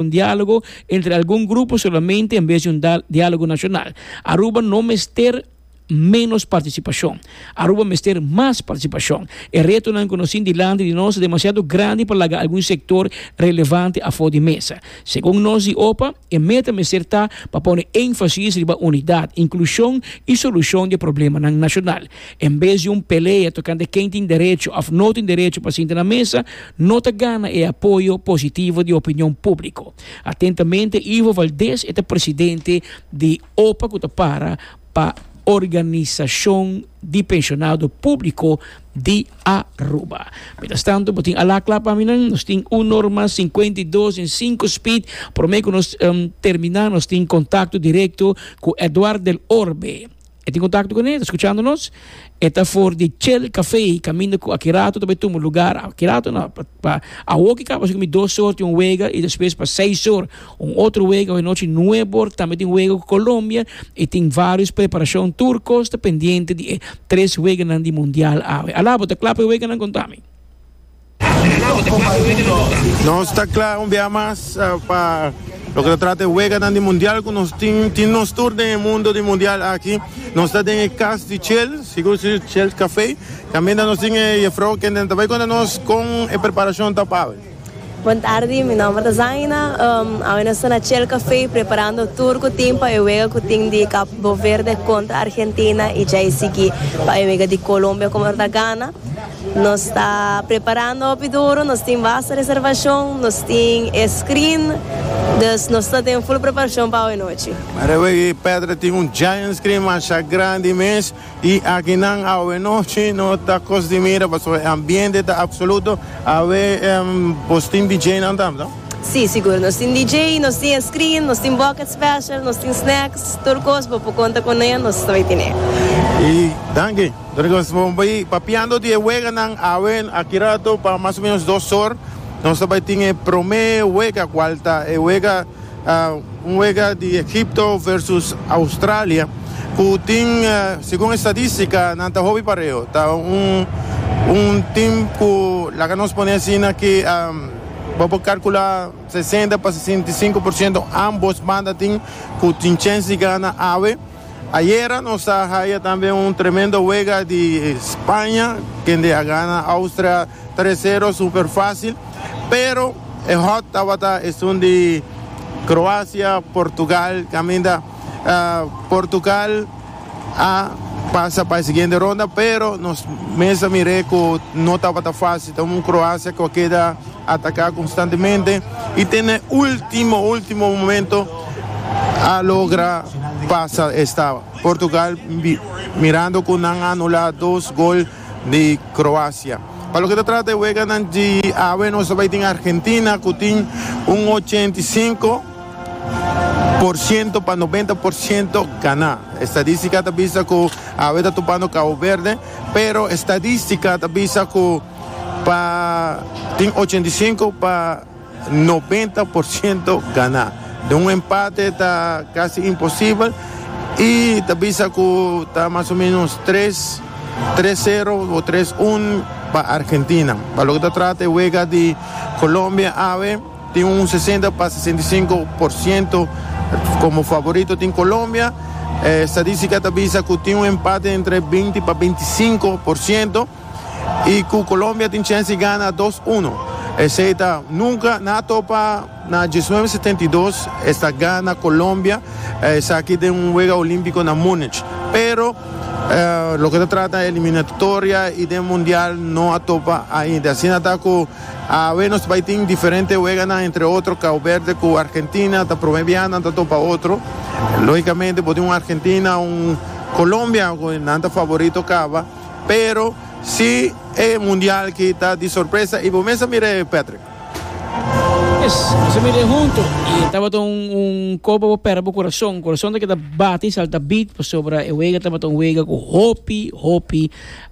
Un diálogo entre algun grupo solamente en bes di un diálogo nacional. Aruba no mester menos participacion. Aruba mester mas participacion. E retonan cu nos tin dilanti di nos ta demasiado grandi pa laga algun sector relevante afo di mesa. Segun nos di opa, e meta mester ta pa pone enfasis riba unidad, inclusion y solucion di e problemanan nacional. En bes di un pelea tokante ken tin derecho òf no tin derecho pa sinta na mesa, no ta gana e apoyo positivo di opinion públiko. Atentamente, Ivo Valdés, e ta presidente di opa ku ta para pa Organisashon di Penshonado Públiko di Aruba. Mientrastantu, bo tin alá kla pa mi nan, nos tin un norma sinkuenta i dos den sinku spid. Promé ku nos terminá, nos tin kontakto direkto ku Edward del Orbe, E tin kontakto kuné, ta skuchando nos. E ta for di Chel Café, kaminda ku Akirato ta bai tuma lugar. Akirato no, pa awoki kaba asina ku mi dos or tin un wega i despues pa seis or un otro wega. Awe nochi nuebe or tambe tin wega ku Colombia i tin varios preparashon. Tur kos ta pendiente di e tres weganan di mundial awe. Alabo, ta kla pa e weganan? Konta mi. Nos ta kla un biaha mas pa loke ta trata e weganan di mundial ku nos tin, tin nos tur den e mundo di mundial aki. Nos ta den e kas di Chel, sigur si Chel Café. Tambe nos tin e jefrouw kende ta bai konta nos kon e preparashon ta pa awe. Bon tardi, mi nòmber ta Zaina. Awe nos ta na Chel Café preparando tur ku tin pa e wega ku tin di Kaboverde kontra Argentina i djai sigui pa e wega di Colombia ku por ta gana. Nos ta preparando hopi duru, nos tin basta reservashon, nos tin e screen, dus nos ta den full preparashon pa awe nochi. Rewe e pedra tin un giant screen masha grandi mes i aki nan awe nochi no ta cos di mira pasobra e ambiente ta absoluto. Awe bos tin DJ nan tam, no? Si, sigur, nos tin DJ, nos tin e screen, nos tin bucket special, nos tin snacks, tur cos bo por conta cu ne nos ta bay tine. Danki. Dor nos bon bai papiando di e weganan awe aki rato pa mas o menos dos or. Nos ta bai tin e promé wega kual ta e wega un wega di Egipto versus Australia ku tin segun estadistika nan ta hopi pareo. Ta un un tim ku laga nos pone asina ki bo por kalkulá sesenta pa sesenta i sinku por siento ambos banda tin ku tin chèns di gana awe. Ayera nos a haya tambe un tremendo wega di Spaña, kende a gana Austria tres sero super facil, pero e hot tabata esun di Croacia, Portugal, caminda Portugal a pasa pa e siguiente ronda, pero nos mes a mir'é cu no tabata facil, ta un Croacia cu a keda ataca constantemente y te n'e ultimo, ultimo momento. a logra pasa esta Portugal mirando cu nan a anula dos gol di Croacia. Pa loke ta trata e weganan di awe nos ta bay tin Argentina cu tin un ochenta i sinku por ciento pa noventa por ciento gana. Estadistica ta bisa cu awe ta tupando Cabo Verde pero estadistica ta bisa cu pa tin ochenta i sinku pa Nobenta por ciento ganá. Den un empate ta casi imposible y ta bisa cu ta mas o menos tres, tres cero o tres un pa Argentina. Pa loke ta trata e wega di Colombia awe tin un sesenta pa sesenta y sinku por ciento como favorito tin Colombia. E statistica ta bisa cu tin un empate entre binti pa binti sinku por ciento. y cu Colombia tin chens di gana dos uno. Esey ta nunca nan a topa na diesnuebe setenta y dos esta gana Colombia esaki den un wega olimpico na Munich. Pero loke ta trata eliminatoria y den mundial no a topa ainda. Asina ta cu awe nos bay tin diferente weganan entre otro Cabo Verde cu Argentina ta prome bia nan ta topa otro. Logicamente bo tin un Argentina un Colombia cu nan ta favorito caba. Pero si e mundial ki ta di sorpresa y bo mes a mira e Patrick. Yes, nos a mira e hunto y tabata un copa pa pera bo corazon, corazon ta keda bati, salta beat pasobra e wega tabata un wega cu hopi hopi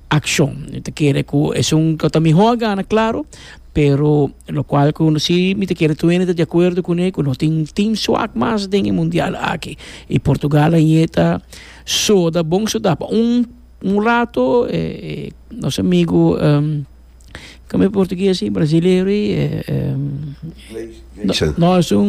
accion. Mi ta kere cu esun lo ta miho a gana claro, pero lo cual cu si mi ta kere Twenty ta di acuerdo cune cu no tin team suak mas den e mundial aki y Portugal aye ta soda bon soda pa un Un rato e nos amigu kamba e portugues ahi brasileiro ahi no esun.